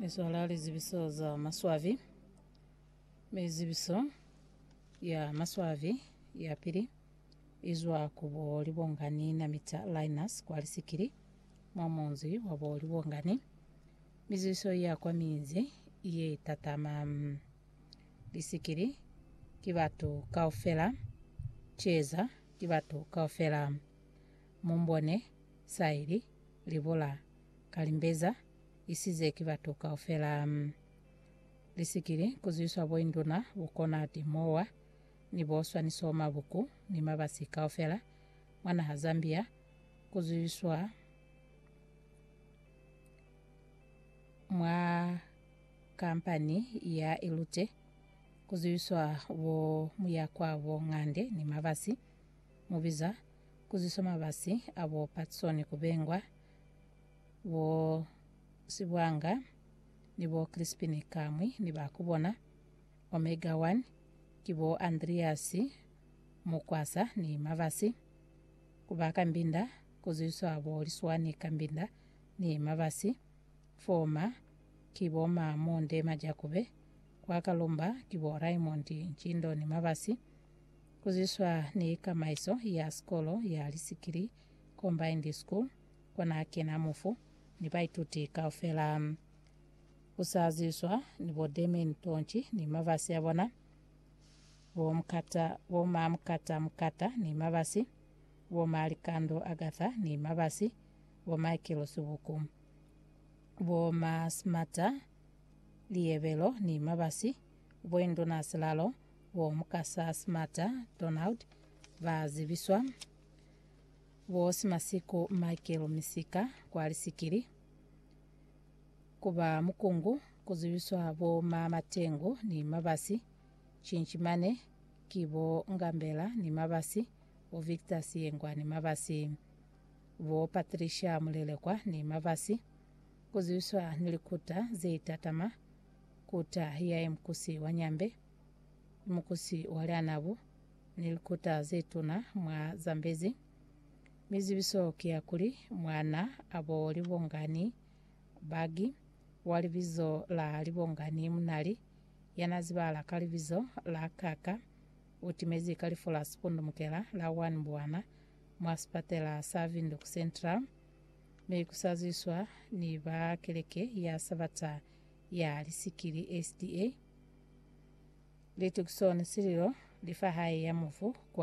Ni zwala lizibiso za maswabi. Mi zibiso ya maswabi ya pili i zwa ku bo Libongani na Mita Linus kwa Lisikili, mwa munzi wa bo Libongani. Mi zibiso ya kwa minzi ye tatama mm, Lisikili ki batu kaufela, Ceza ki batu kaufela, Mumbone, Saili, libola ka limbeza, isize ki batu kaufela. Lisikili kuzwiswa boinduna, bukona, timowa, ni bo swaniso, mabuku, ni mabasi kaufela mwa naha Zambia, kuzwiswa mwa kampani ya Ilute, kuzwiswa bo muyakwa, bo ngande, ni mabasi. mu biza ku ziswa mabasi a bo Patsoni ku bengwa, bo Sibwanga ni bo Krispini kamwi ni ba ku bona, Omega One, ki bo Andreasi Mukwasa ni mabasi, ku ba Kambinda ku ziswa bo Liswani Kambinda ni mabasi, Foma ki bo ma Monde Majakube, kwa Kalumba ki bo Raymond Ntshindo ni mabasi, Ku zwiswa ni kamaiso ya sikolo ya lisikili, combined school, kona kena mufu ni baituti kaufela. Ku sa zwiswa ni bo Damien Tonchi ni mabasi a bona, bo Mkata, bo ma Mkata Mkata ni mabasi, bo ma Likando Agatha ni mabasi, bo Michael Subuku, bo ma Smata Liyebelo ni mabasi, bo Induna Silalo Bo Mukasa Smata Donald ba zibiswa bo Simasiku Michael Misika kwa Lisikili, ku ba Mukungu ku zibiswa bo Ma Matengu ni Mabasi, Chinchimane ki bo Ngambela ni Mabasi, bo Victor Siyengwa ni Mabasi, bo Patricia Mulelekwa ni Mabasi, ku zibiswa ni likuta ze tatama Kuta ya imukusi wa nyambe, imukusi wa lianabu, ni likuta zetuna mwa Zambezi. Mizibiso ki ya kuli, mwana abo Libongani Bagi, wa libizo la Libongani Munali, yana zibahala ka libizo la Kaka, utimezi ka lifu la sipundumukela la 1 Mbwana mwa sipatela sa Windhoek Central, mi kusazwiswa ni ba keleke ya Sabata ya lisikili SDA, Litukison Sililo, lifa hae ya mufu kwa